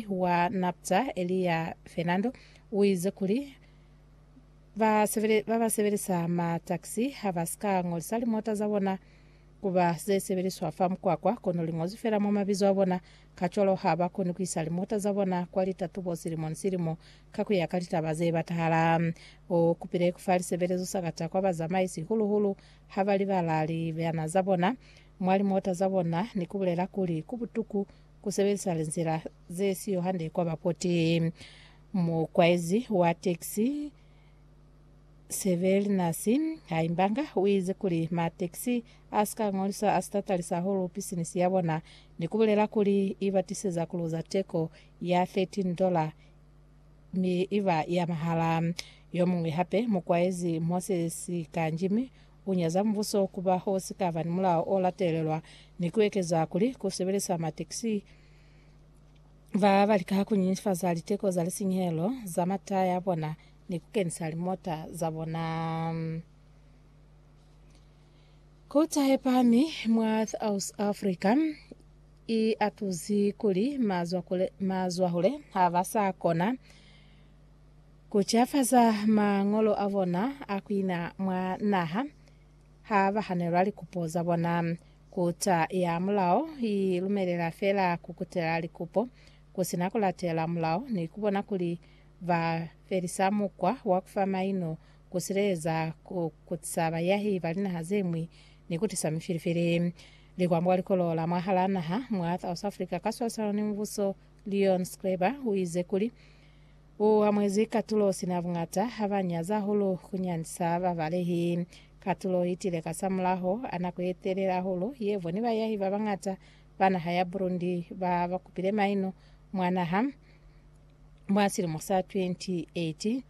wa NAPDA, Elia Fernando, u ize kuli, Ba ba sebelisa mataxi ha ba si ka ngolisa limota za bona ku ba ze sebeliswa fa mukwakwa, kono li ngozwi fela mwa mabizo a bona. Kacwalo ha ba koni ku isa limota za bona kwa litatubo silimo ni silimo ka ku ya ka litaba ze batahala. U kupile ku fa lisebelezo sakata kwa bazamaisi, hulu-hulu ha ba libala libana za bona mwa limota za bona ni ku bulela kuli ku butuku ku sebelisa linzila ze siyo hande kwa ba poti. Mukwaezi wa taxi Severlinus Haimbanga u ize kuli ma taxi a si ka ngolisa a si ta talisa hahulu pisinisi ya bona ni ku bulela kuli i ba tiseza ku luza teko ya $13 mi i ba ya mahala. Yo muñwi hape, mukwaezi Moses Kanjimi, Ku nyaza mubuso ku ba ho si ka ba ni mulao o latelelwa ni ku ekeza kuli ku sebelisa matekisi ba ba lika ku nyifaza liteko za lisinyehelo za mataya a bona ni ku kenisa limota za bona ku tahe pami mwa South Africa i atuzi kuli mazwahule ha ba sa kona Ku cafaza mañolo a bona a ku ina mwa naha ha ba hanelwa likupo za bona. Kuta ya mulao i lumelela fela ku kutela likupo ku si na ku latela mulao ni ku bona kuli ba felisa mukwa wa ku fa maino, ku sileleza, ku kutisa bayahi ba linaha ze ñwi, ni ku tisa mifilifili. Likwambuka likolola mwahalaa naha mwa South Africa ka swalisano ni mubuso, Leon Schreiber u ize kuli, U amuezi katulo sina bungata ha ba nyaza hahulu ku nyandisa babalehi. Katulo itile kasamulaho a nako ye telele hahulu ye bo ni bayahi ba bangata ba naha ya Burundi ba ba kupile maino mwa naha mwa silimo sa 2018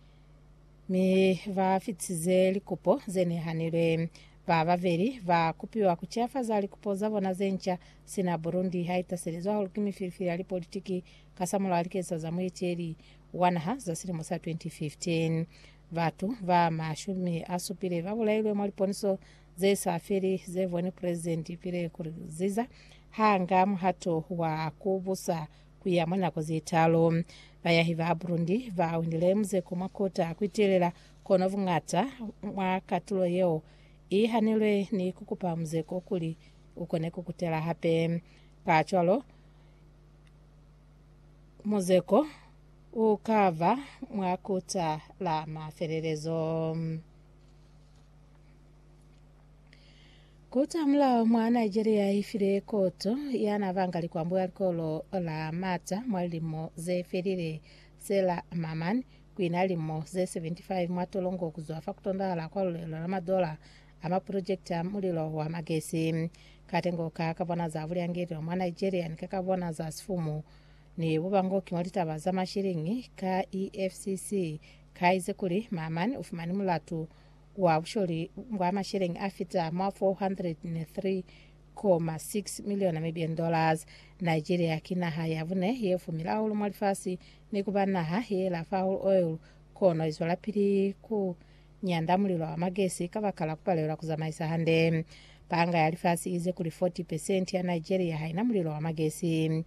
mi ba fitisize likupo ze nehanilwe. Ba babeli ba kupiwa ku ciafaza likupo za bona ze nca sina Burundi ha itaselizwa hahulu ki mifilifili ya lipolitiki Kasamulaho likeza za mueteli wa naha za silimo sa 2015, batu ba mashumi a supile ba bulailwe mwa liponiso ze sa feli ze boni President Pierre Nkurunziza ha nga muhato wa ku busa ku ya mwa nako ze talu. Bayahi ba Burundi ba winile muzeko mwa kota ku itelela, kono buñata mwa katulo yeo i hanilwe ni ku kupa muzeko kuli u kone ku kutela hape. Kacwalo, Muzeko u ka ba mwa kuta la mafelelezo. Kuta mulao mwa Nigeria i file koto ya na banga likwambo ya likolo la mata mwa lilimo ze felile se la Mamman kwi na limo ze 75 mwa tolongo ku zwa fa ku tondahala kwa lulelo la madola a mapulojekiti a mulilo wa magesi. Katengo ka ka bona za bulyangelelo mwa Nigeria ni ka ka bona za sifumu ni bubangoki mwa litaba za mashiliñi ka EFCC ka ize kuli Maman u fumani mulatu wa busholi bwa masheleñi a fita mwa 403.6 miliona Namibian dollars. Nigeria ki naha ya bune ye fumile hahulu mwa lifasi ni ku ba naha ye lafa hahulu oil kono i zwelapili ku nyanda, mulilo wa magesi kabakala kupalelwa kuzamaisa hande. Panga ya lifasi iize kuli 40 pesenti ya Nigeria haina mulilo wa magesi.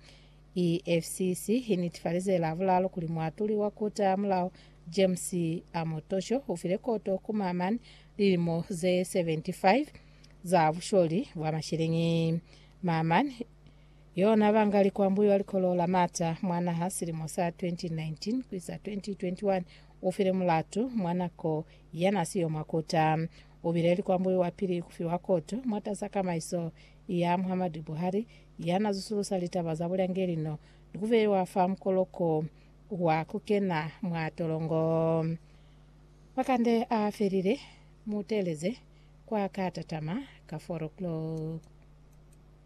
EFCC inetifalize Lavulalo kuli muatuli wa Kota ya Mulao James Omotosho ufile koto ku Maman lilimo ze 75 za busholi bwa masheleñi. Maman Yona banga likwambuyo ya likolo la mata mwa naha silimo sa 2019 ku isa 2021 u file mulatu mwa nako ya na siyo mwa kota. U bile likwambuyo wa pili ku fiwa koto mwatasa kamaiso ya Muhammadu Buhari ya na zusulusa litaba za bulyangeli no ni ku beiwa fa mukoloko wa ku kena mwa tolongo. Makande a felile, mu teeleze kwa ka tatama ka 4 o'clock.